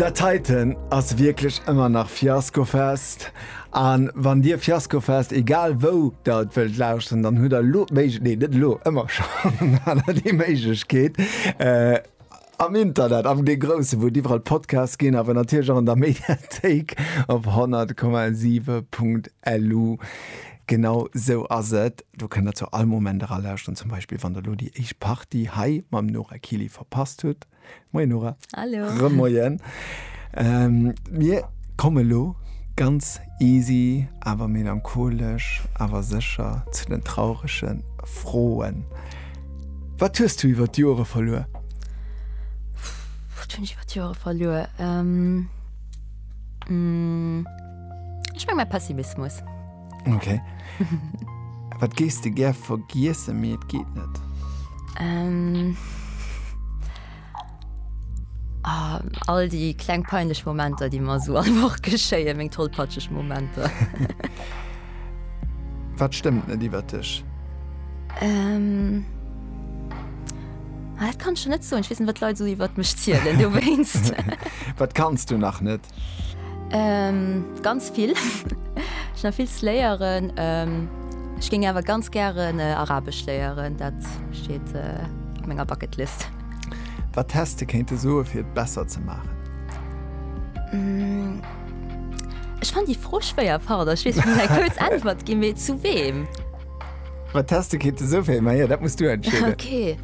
Dat heiten ass wierklech ëmmer nach Fiaskofest an wann dir Fiaskofest egal wou der et wëllt lauschteren, dann hutt der elo d'Méiglech nee net elo ëmmer schonn an der déi Méiglechkeet äh am Internet am dee grousse wou et iwwerall Podcasts ginn awer natierlech och an der Mediathéik op 100,7.lu. Genau sou ass et. Do kënnt der zu all Moment era lauschteren, zum Beispill wann der elo déi éischt Partie hei mam Nora Kili verpasst hutt. Moien Nora. Hallo. Remoien. Ähm, mir komme elo ganz easy awer melancholesch awer sécher zu den traurege Froen. Wat hues du iwwer d'Jore verluer? Wat hunn ech iwwer d'Jore verluer? Ähm, mmh. Ech meng mei Pessimismus. Ok. Wat gees de gär vergiessen, mee et geet net? Ähm. Ah, all déi kleng peinlech Momenter, déi mer esou all Woch geschéien, meng tollpatscheg Momenter. Wat stëmmt net iwwer dech? Ähm. Ah, dat kann ech jo net soen. Ech weess net, wat d'Leit esou iwwer mech zielen dowéinst. Wat kanns du nach net? Ähm, ganz vill. Ech nach vill ze léieren. Ähm, ech géing awer ganz gären äh, Arabesch léieren. Dat steet äh, op menger Bucketlist. Wat häss de kéinte soe fir et besser ze maachen? Mm, ech fann déi Fro schwéier, pardon. Ech weess, eng kuerz Äntwert ginn, mee zu weem? Wat häss de kéinte soe fir. Maja, dat muss du entscheeden. Okay.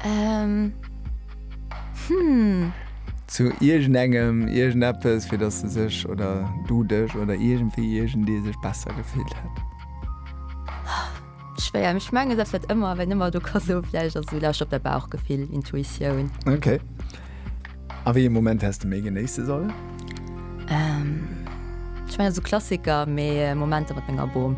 Ähm. Zu iergendengem, iergendeppes, fir dass se sech oder du dech oder iergendwéi, iergendee sech besser gefillt hätt. Schwéier, mee ech mengen, dat wäert ëmmer, wéin ëmmer do ka soe, vläicht ass esou, lauscht op däi Bauchgefill, Intuitioun. Ok. A wéi ee Moment häss de méi genéisse sollen? Ech mengen esou Klassiker, mee Momenter mat menger Bom.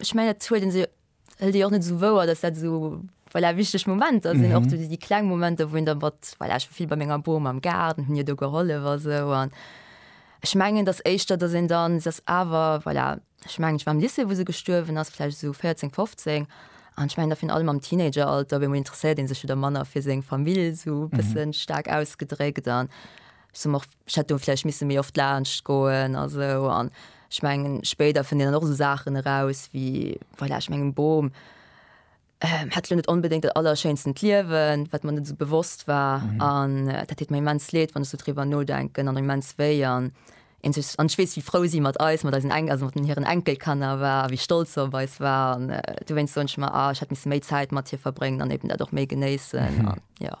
ech mengen dat huet se hëlt Dir och net sou wouer, datt dat sou voilà, wichteg Momenter sinn och déi kleng Momenter, wou en der mat voilà, ech war vill bei menger Bom am Gaart, hunn hir do gehollef a sou an ech mengen datt éischter datt een dann se ass awer voilà, ech mengen ech war am Lycée wou se gestuerwen ass, vläicht esou 14, 15 an ech mengen da virun allem am Teenageralter op eemol interesséiert ee sech wieder manner fir seng Famill esou e bësse staark ausgedréckt an ech soe mer och. Ech hätt do vläicht misse méi oft laanscht goen a sou. An ech mengen, spéider fënnt een dann och esou Saachen eraus wéi, voilà, ech mengen, e Bom hätt elo net onbedéngt dat allerschéinsten Liewen, wat mer net esou bewosst war. An dat deet mer immens leed, wann ech sou driwwer nodenken, an immens wéi. An een sech, an ech weess, wéi frou si mat eis, mat eisen Enk, also mat hiren Enkelkanner war a wéi stolz se op eis war. An dowéinst soen ech mer, ah, ech hätt misse méi Zäit mat hir verbréngen an eben dat och méi genéissen. An jo.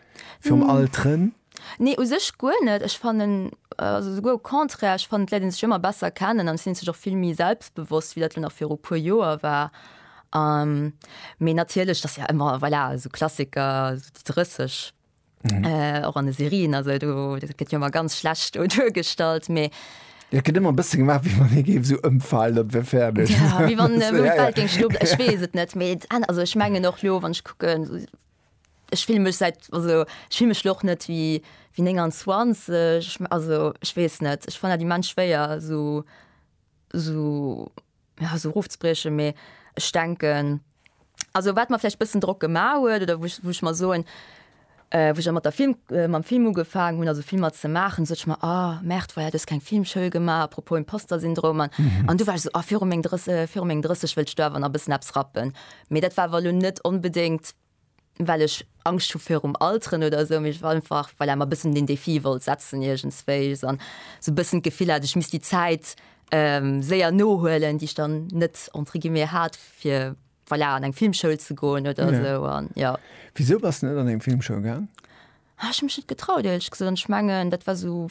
Virum Alteren? Nee, u sech guer net. Ech fannen, also souguer au contraire, ech fannen, d'Leit léine sech ëmmer besser kennen an et sinn et sech och vill méi selbstbewosst, wéi dat elo nach viru puer Joer war. Mee natierlech, et ass jo ëmmer, voilà, esou Klassiker, esou déi 30, och an de Serien, also do, dat gëtt jo ëmmer ganz schlecht do duergestallt, mee. Jo, et gëtt ëmmer e bësse gemaach, wéi wann ee géif esou ëmfalen, dat wär fäerdeg. Jo, wéi wann d'Welt géing stoppen. Ech weess et net, mee, also ech mengen och elo, wann ech kucken, Ech fillen mech säit, also ech fillen mech lo och net wéi wéi 29, also ech weess net, ech fannen dat immens schwéier esou esou ja esou erofzebriechen, mee ech denken also wat mer vläicht bëssen Drock gema huet oder wou ech wou ech mer soen wou ech mat der Film mam Film ugefaangen hunn also Filmer ze maachen, sot ech mer ah merde voilà du hues keng Filmschoul gemaach, apropos Imposter-Syndrom an an du war ech esou ah viru meng 30 viru meng 30 wëllt ech do awer nach e bëssen eppes rappen. Mee dat war awer elo net onbedéngt, well ech Angscht hu virum Alteren oder esou, mee ech war einfach, voilà, mer e bëssen den Défi wollt setzen iergendswéi an esou e bëssen d'Gefill hat, ech misst déi Zäit séier nohuelen, déi ech dann net, entre guillemets, hat, fir, voilà, an eng Filmschoul ze goen oder esou. Wisou bass de net an eng Filmschoul gaang? Ech hu mech net getraut, ierlech gesot. An ech mengen, dat war esou,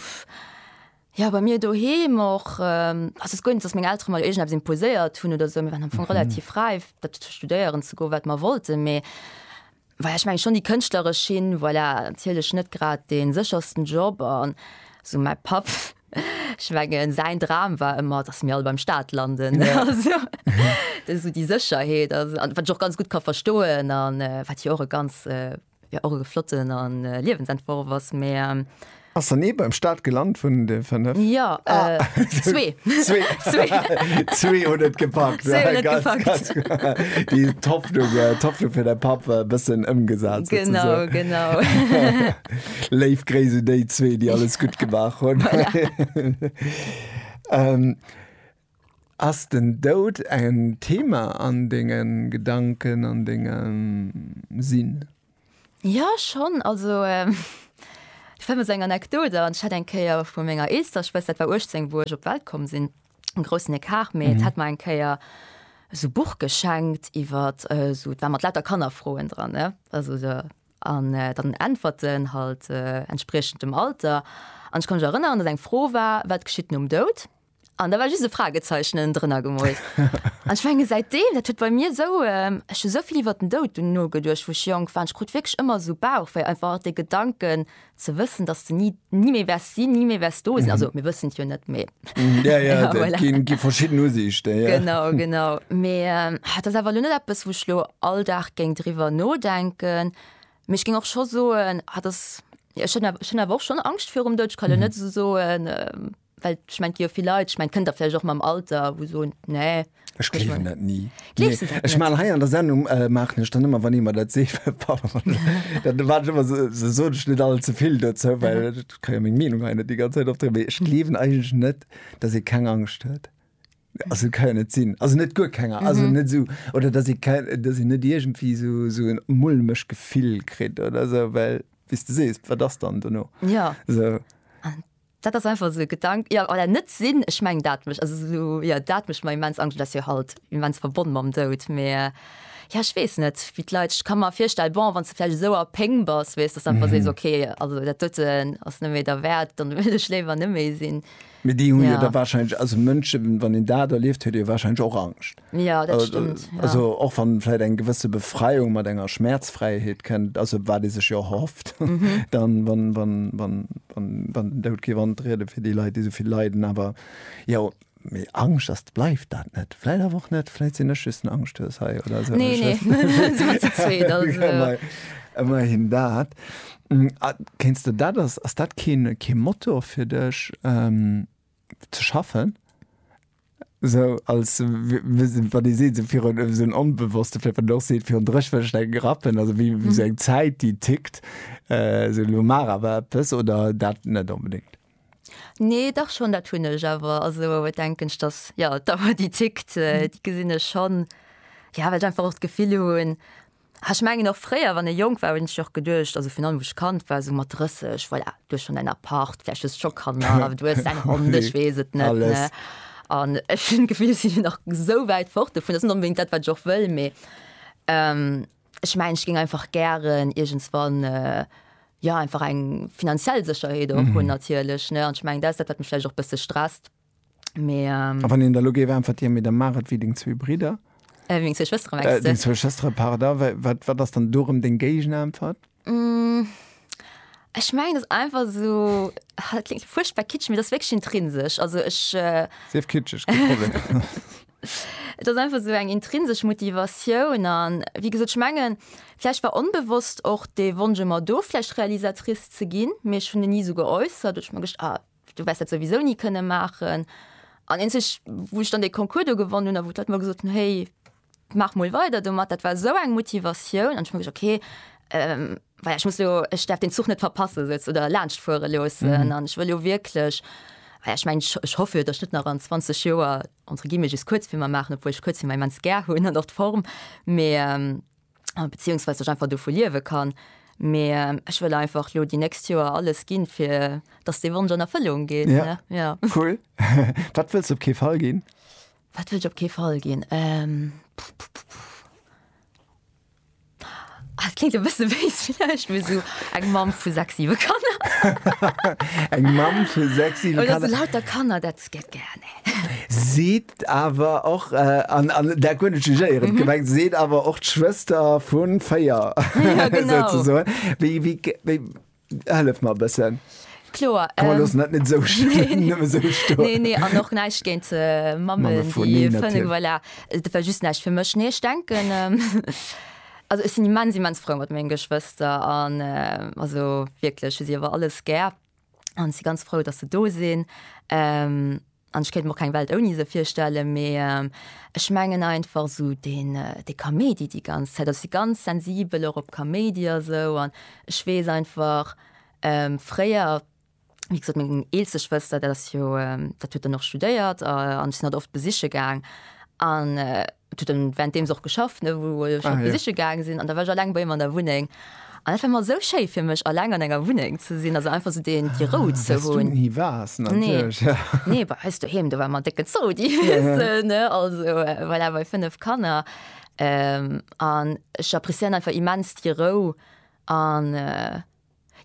jo, bei mir doheem och. Also et gouf net, datt meng Eltere mer iergendeppes imposéiert hunn oder esou. Mir waren am Fong relativ räif, dat fir studéieren ze goen, wat mer wollten. Mee voilà, ech mengen schonn déi kënschtleresch Schinn, voilà, natierlech net grad dee séchersten Job. An esou mäi Papp, ech mengen säin Dram war ëmmer, datt mir all beim Staat landen. Also esou déi Sécherheet, also wat ech och ganz gutt ka verstoen an wat jo och e ganz, Jo och e flotten a Liewensentworf ass mä. Ass dann ee beim Start gelant vun de 5? Jo, zwee. Zwee hunn et gepackt. Zwee hunn et gepackt. Déi d'Hoffnung fir däi Papp e bëssen ëmgesat souzesoen. Genau, genau. Léif Gréiss un déi zwee, déi alles gutt gemaach hunn. Voilà. Ass den Doud en Thema an denge Gedanken, an dengem Sinn? Jo, schonn. Also, ech fänken mat esou enger Anekdot an. Ech hat eng Kéier vu menger eelster Schwëster, dat war 18, wou ech op d'Welt komm sinn, en groussen Ecart, mee d'hat mer eng Kéier esou e Buch geschenkt iwwer esou, dat war mat lauter Kannerfroen dran, ne, also esou, an dann Äntwerten halt entspriechend dem Alter. An ech ka mech erënneren, datt eng Fro war, Wat geschitt nom Doud? An da war just e Fragezeichnen drënner gemoolt. An ech menge säitdeem, dat huet bei mir esou, ech hu sou vill iwwert den Doud dunn nogeduecht, wou ech jonk war, an ech krut wierklech ëmmer esou Bauchwéi, einfach dee Gedanken ze wëssen, dass de ni, ni méi wäers sinn, ni méi wäers do sinn. Also mir wëssen et jo net, mee voilà. Ja, ja, dat gi, gi verschidden Usiichten, ja. Genau, genau. Mee dat ass awer elo net eppes, wou ech elo all Dag géing driwwer nodenken. Mee ech géing och scho soen, dat ass, jo, ech hunn, ech hunn awer och schonn Angscht virum Doud. Ech kann elo net esou soen, Well ech mein, jo vill Leit, ech mein, kënnt der vläicht och mam Alter, wou soen, nee. Ech gleewen dat ni. Gleefs du dat net? Ech man hei an der Sendung äh, maachen ech dann ëmmer, wann ee mer dat seet, dann war ech ëmmer so, so soen ech net all ze vill dozou, well ech kann jo meng Meenung hei net déi ganz Zäit opdréinen. Mee ech gleewen eigentlech net, dass ee keng Angscht huet. Also dat kann jo net sinn. Also net guer keng, also net esou. Oder dass ee keng, dass een net iergendwéi esou, esou en mulmeg Gefill kritt oder esou, well wéi s de sees, wat ass dann dono? Jo. Esou. Dat ass einfach esou e Gedank, jo, oder net sinn. Ech mengen, dat mécht, also esou, jo, dat mécht mer immens Angscht. Et ass jo halt immens verbonn mam Doud, mä jo, ech weess net, wéi d'Leit, ech ka mer virstellen, bon, wann s de vläicht esou a Péng bass, weess, datt s de einfach sees, ok, also dat doten ass net méi derwäert, dann wëll ech léiwer net méi sinn. Mee déi hu jo da wahrscheinlech, also Mënschen, wann een dat erlieft, huet ee jo wahrscheinlech och Angscht. Ja, dat stëmmt, ja. Also och wann vläit eng gewësse Befreiung mat enger Schmäerzfräiheet kënnt, also wat ee sech jo erhofft, dann, wann, wann, wann, wann, wann den Doud géif antrieden fir déi Leit, déi esou vill leiden. Awer jo, mee Angscht, dass et bleift dat net. Vläit awer och net. Vläit sinn ech just en Angschthues hei oder esou. Nee, nee, da si mer ze zweet, also. Ëmmerhin dat. A kéinst de dat, ass, ass dat kee, kee Motor fir dech? ze schaffen so als wat Dir seet virun esou en onbewosste fir wat och seet virun dréch wëllt ech dat grappen also wéi wéi sou eng Zäit déi tickt esou elo mar awer eppes oder dat net onbedéngt? Nee dach schonn, dat hunn ech awer also et denken ech datt jo d'Auer déi tickt déi gesinn ech schonn jo well ech einfach och d'Gefill hunn, Ah ech mengen och fréier wann ee jonk war hunn ech och geduecht, also virun allem wou ech Kand war esou mat 30, voilà du hues schonn däin Appart, vläicht hues scho Kanner, awer du hues däin Hond, ech weess et net, ne? Alles. An ech hunn d'Gefill ech sinn nach esou wäit fort dovun, dat ass net onbedéngt dat wat ech och wëll, mee ech mengen ech géing einfach gären iergendswann jo einfach eng finanziell Sécherheet och hunn natierlech, ne? An ech mengen dat ass dat wat mech vläicht och e bësse stresst. Mais, ähm, A wann een der lo géif äntwertieren, mee da maach et wéi deng zwee Bridder, äh, wéi meng zwee Schwëstere mengst äh, du? deng zwee Schwëstere, pardon, wa- wat, wat ass dann do erëm deng Géigenäntwert? Mm, Ech mengen, dat ass einfach esou, ah, dat kléngt fuerchtbar kitschig, mee dat ass wierklech intrinsesch. Also ech, äh, Sief kitscheg, kee Problem. et ass einfach esou eng intrinsesch Motivatioun an, wéi gesot, ech mengen, vläicht war onbewosst och dee Wonsch ëmmer do, vläicht Realisatrice ze ginn, mee ech hunn en ni esou geäussert. Ech hu mer gedacht, ah, Du wäers dat souwisou ni kënne maachen. An eenzeg, wou ech dann dee Concours do gewonnen hunn a wou d'Leit mer gesot hunn, Héi, maach mol weider domat, dat war esou eng Motivatioun. An ech hu mer gesot, Okay, well ech muss elo, ech däerf deen Zuch net verpasse souz oder laanscht fuere loossen. An ech wëll jo wierklech, well ech mengen, ech hoff jo, datt ech net nach an 20 Joer, entre guillemets, just Kuerzfilmer maachen, obwuel ech Kuerzfilmer immens gär hunn an och d'Form, mee, beziehungsweise ech einfach dovu liewe kann. Mee ähm, ech wëll einfach lo déi nächst Joer alles ginn, fir dass dee Wonsch an Erfëllung geet. Ja. ja. Cool. Wat wëlls op kee Fall ginn? Wat wëll ech op kee Fall ginn? Ähm, Ah, klingt e bësse wéis vielleicht mir so eng Mam vu sechs siwe Kanner. eng Mam vu sechs siwe Kanner. So lauter Kanner dat gett gerne. Seet Awer och, an dat guer net jugéierend gemengt, seet awer och d'Schwëster vu véier, souzesoen. Wéi, hëllef mer e bëssen. Kloer. Komm, mer loossen dat net esou schlimm nëmme esou stoen. Nee, nee, an och näischt géint d'Mammen, déi fënnel. Mamme vun, nee, natierlech. Dat war just näischt fir mech. Nee, ech denken, also ech sinn immens, immens frou mat mengen Geschwëster an also wierklech hu si awer alles gär. an si ganz frou, datt se do sinn. An ech kéint mer och keng Welt ouni se virstelle, mee ech mengen einfach esou deen dee Kaméidi déi ganz Zäit, ech si ganz sensibel och op Kaméidi a sou an ech weess einfach fréier, wéi gesot meng eelste Schwëster, dat ass jo dat huet dann och studéiert an ech sinn hatt oft besiche gaang an. Et huet en währenddeems och geschafft, ne, wou ech Ah, him ja. besiche gaange sinn. An da war ech eleng bei him an der Wunneng. An dat war ëmmer esou schéi fir mech, eleng an enger Wunneng ze sinn, also einfach esou deen, déi Rou ze Wes du hunn. ni waars, Nee. natierlech, ja. Nee, bei eis doheem, do war ëmmer en décken Zodi, weess de, ne? Also voilà, bei fënnef Kanner. An ech appréciéieren einfach immens déi Rou an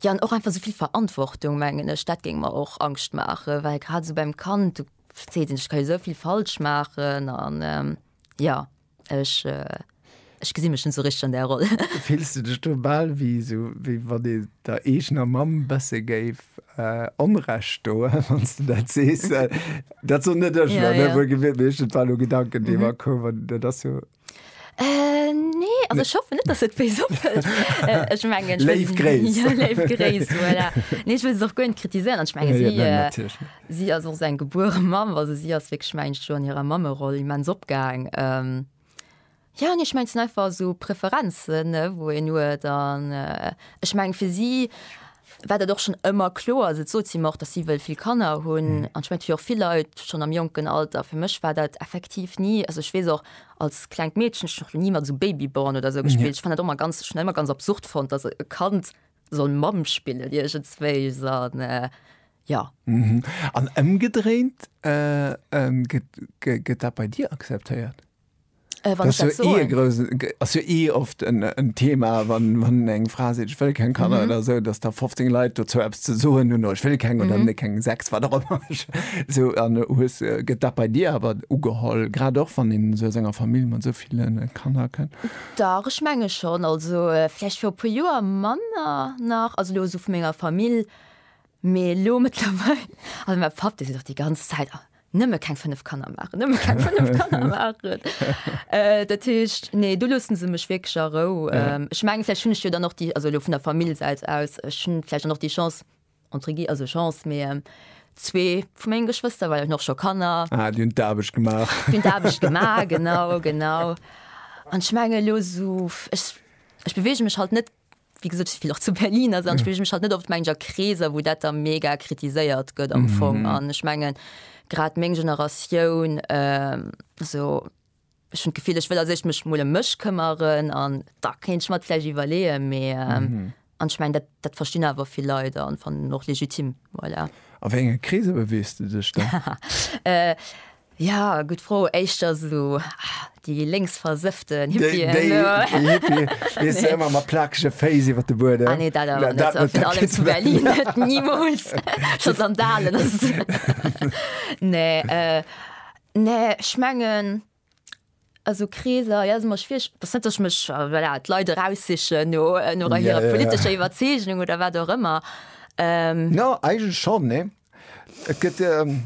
Jo, an och einfach esou vill Verantwortung, mengen ech, dat géing mer och Angscht maachen, well grad esou beim Kand, du verzees net, ech ka jo esou vill falsch maachen an jo, ech, ech gesi mech net esou richteg an där Roll. Fills du dech do bal wéi esou, wéi wann ee der eegener Mamm e bësse géif Onrecht doen, wann s de dat sees? Dat soen net ech elo, ne, wuelgewiert, mee ech, et war elo e Gedanken, dee mer koum an dat ass jo Äh, nee, also ech hoffe net, dass et wéi soppelt. Äh, ech mengen, Léif Gréiss. Ja, léif Gréiss, voilà. Nee, ech wëll se och guer net kritiséieren. Ech menge si, äh, si ass och esou eng gebuere Mamm, also si ass wierklech, mengen ech, do an hirer Mammeroll immens opgaang. Ähm, jo, nee, ech menge, et sinn einfach esou Preferenzen, wou een huet an, äh, ech menge fir si, war dat och schonn ëmmer kloer. Also et sot si mer och, datt si wëll vill Kanner hunn. An ech mengen, et hu jo och vill Leit schonn am jonken Alter. Fir mech war dat effektiv ni, also ech weess och als klengt Meedchen, ech hunn och ni mat esou Babyborn oder esou gespillt. Ech fand dat och ëmmer ganz, schon ëmmer ganz absurd fonnt, datt e Kand soll Mamm spillen iergendswéis an jo. An ëmgedréint, gëtt dat bei dir akzeptéiert? ass jo eh oft en Thema, wann eng Fra seet, ech wëll keng Kanner oder esou, datt da 15 Leit dozou eppes ze soen hunn, ech wëll keng oder ne keng 6, wat och ëmmer. Esou, an hues, gëtt dat bei dir awer ugeholl, grad och wann een esou aus enger Famill mat esou ville Kanner kënnt? Dach, ech menge schonn. Also vläicht viru e puer Joer manner nach, also elo esou vu menger Famill, mee elo mëttlerweil, also mäi Papp dee seet och déi ganz Zäit, nëmme keng 5 Kanner machen nëmme keng 5 Kanner machen äh, dat heescht nee du lussen se mech wegg a rou ja. ähm, ich mengge vielleicht hun ich jo dann noch die also lo vun der Familiesäit aus hun vielleicht noch die Chance entre gi also Chance mé ähm, zwee vu menggen Geschwister weil noch scho Kanner ah, die hun d'Aarbecht gemacht hun d'Aarbecht gemacht genau genau an schmenge lo so ich, ich bewege mech halt net Wéi gesot, ech spillen och zu Berlin, also dann spillen ech mech halt net oft mengen a Kreeser, wou dat da mega kritiséiert gëtt am Fong. An ech mengen, grad meng Generatioun, also ech hunn d'Gefill, ech wëll a sech mech mol ëm mech këmmeren an da kéint ech mer et vläicht iwwerleeën, mee an ech mengen, dat dat verstinn awer vill Leit an fannen en och legitim, voilà. A wéi enge Kreeser beweegst du dech da? Ja, gutt Fro. Éischter sou déi lénksversëfften Hippien. Déi, déi, déi Hippien, weess du, ëmmer mat plakege Féiss iwwer de Buedem. Ah nee, dat awer net. Dat, dat, dat, dat zu Berlin net, nimools. Scho Sandalen. Nee, äh, nee, ech mengen, A sou Kreeser, jo, ass ëmmer schwiereg. Et ass net, datt ech mech, voilà, d'Leit eraussichen no, no Ja, hirer ja, ja. politescher Iwwerzeegnung oder wat och ëmmer. Jo, eigentlech schonn, nee. Et gëtt,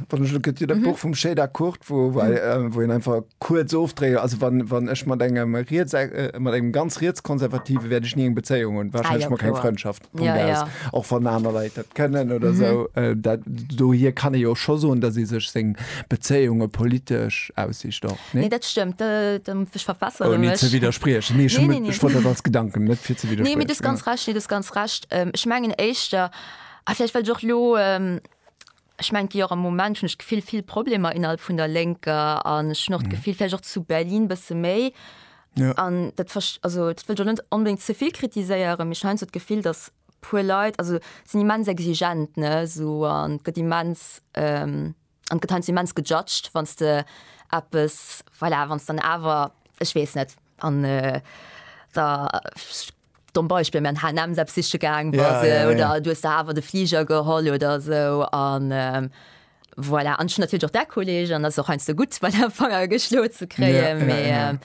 wann ech elo, gëtt jo dat Buch vum Chédar Kurt, wou, wou ei, wou een einfach kuerz ofdréit, also wann, wann ech mat engem riets, mat engem ganz rietskonservative wäert ech ni eng Bezéiung hunn, Ah, jo, wahrscheinlech mol keng kloer. Frëndschaft. Punkt ja, ja. och wann aner Leiit dat kënnen oder mhm. so äh, dat, do hier kann e jo scho soen, dat se sech seng Bezéiunge politesch aussicht doch ne nee, dat stemmtch verfasser oh, nee, ze widerspriechen nee, nee, nee, nee. dat als Gedanken net fir ze wieder nee, ganz ja. recht nee, ganz recht ähm, ich menggen Eichter ah, vielleicht lo ähm, Ech mengen jo och am Moment hunn ech d'Gefill vill Problemer innerhalb vun der Lénker an ech hunn och d'Gefill vläicht och zu Berlin e bësse méi. Jo. An dat verst-, also dat wëll ech och net onbedéngt ze vill kritiséieren, mee ech hunn heiansdo d'Gefill, datt e puer Leit, also sinn immens exigent, ne, esou an et gëtt immens, an et gëtt heiansdo immens gejudged, wann s de eppes, voilà, wann s de dann awer, ech weess net, an der, Domm Beispill, mä an H&M eppes siche gaang bass, yeah, yeah, yeah. oder du hues der awer de Fliger geholl oder sou an. Ähm, voilà. An schon natürlich auch der Kollege an das auch ein so gut bei der Fanger geschlo zu kreen ja, ja, ja. Ähm,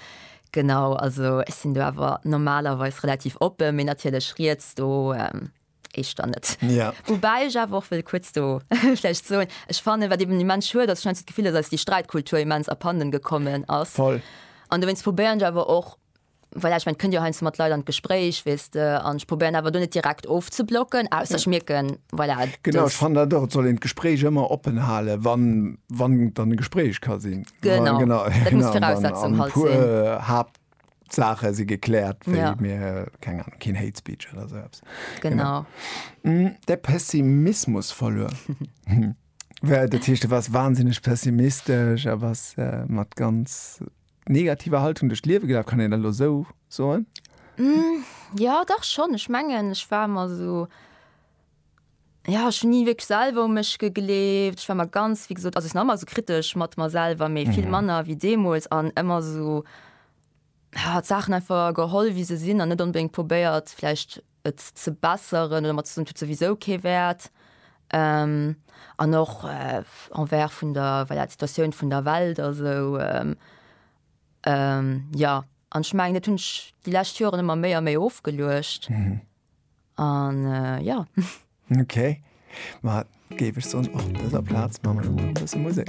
genau also es sind du aber normalerweise relativ open mir natürlich schriest du ähm, ich dann net ja. wobei ich auch will kurz du vielleicht so ich fand wat eben die man schu das scheint gefühl dass die Streitkultur immens abhanden gekommen aus voll an du wennst probieren aber auch Voilà, ech mengen, et kënnt jo heiansdo mat Leit an d'Gespréich, weess de, an ech probéieren awer do net direkt ofzeblocken, ausser ech mierken, voilà, dass. Genau, ech fannen dat och, et soll een d'Gespréich ëmmer oppen halen, wann, wann dann e Gespréich ka sinn. Genau, dat muss d'Viraussetzung halt sinn. An e puer Haaptsaache si gekläert, wéi mir, keng Ahnung, keen Hate Speech oder esou eppes. Genau. De Pessimismus verluer. Dat heescht, du waars wahnsinneg pessimistesch a bass mat ganz. negativer Haltung duerch d'Liewe gelaf, kann een dat elo esou soen? Jo, dach schonn. Ech mengen, ech war ëmmer esou, jo, ech hunn ni wierklech selwer u mech gegleeft. Ech war ëmmer ganz, wéi gesot, also ech sinn nach ëmmer esou kritesch mat mer selwer, mee vill manner wéi deemools an ëmmer esou, jo, d'Saachen einfach geholl, wéi se sinn an net onbedéngt probéiert vläicht, et ze besseren oder mat soen et huet souwisou kee Wäert an och envers vun der voilà d'Situatioun vun der Welt a sou jo an ech mengen dat hunn ech déi lescht Joren ëmmer méi a méi ofgeluecht an jo. Okay, ma géif ech soen op dëser Plaz maache mer elo mol e bësse Musek.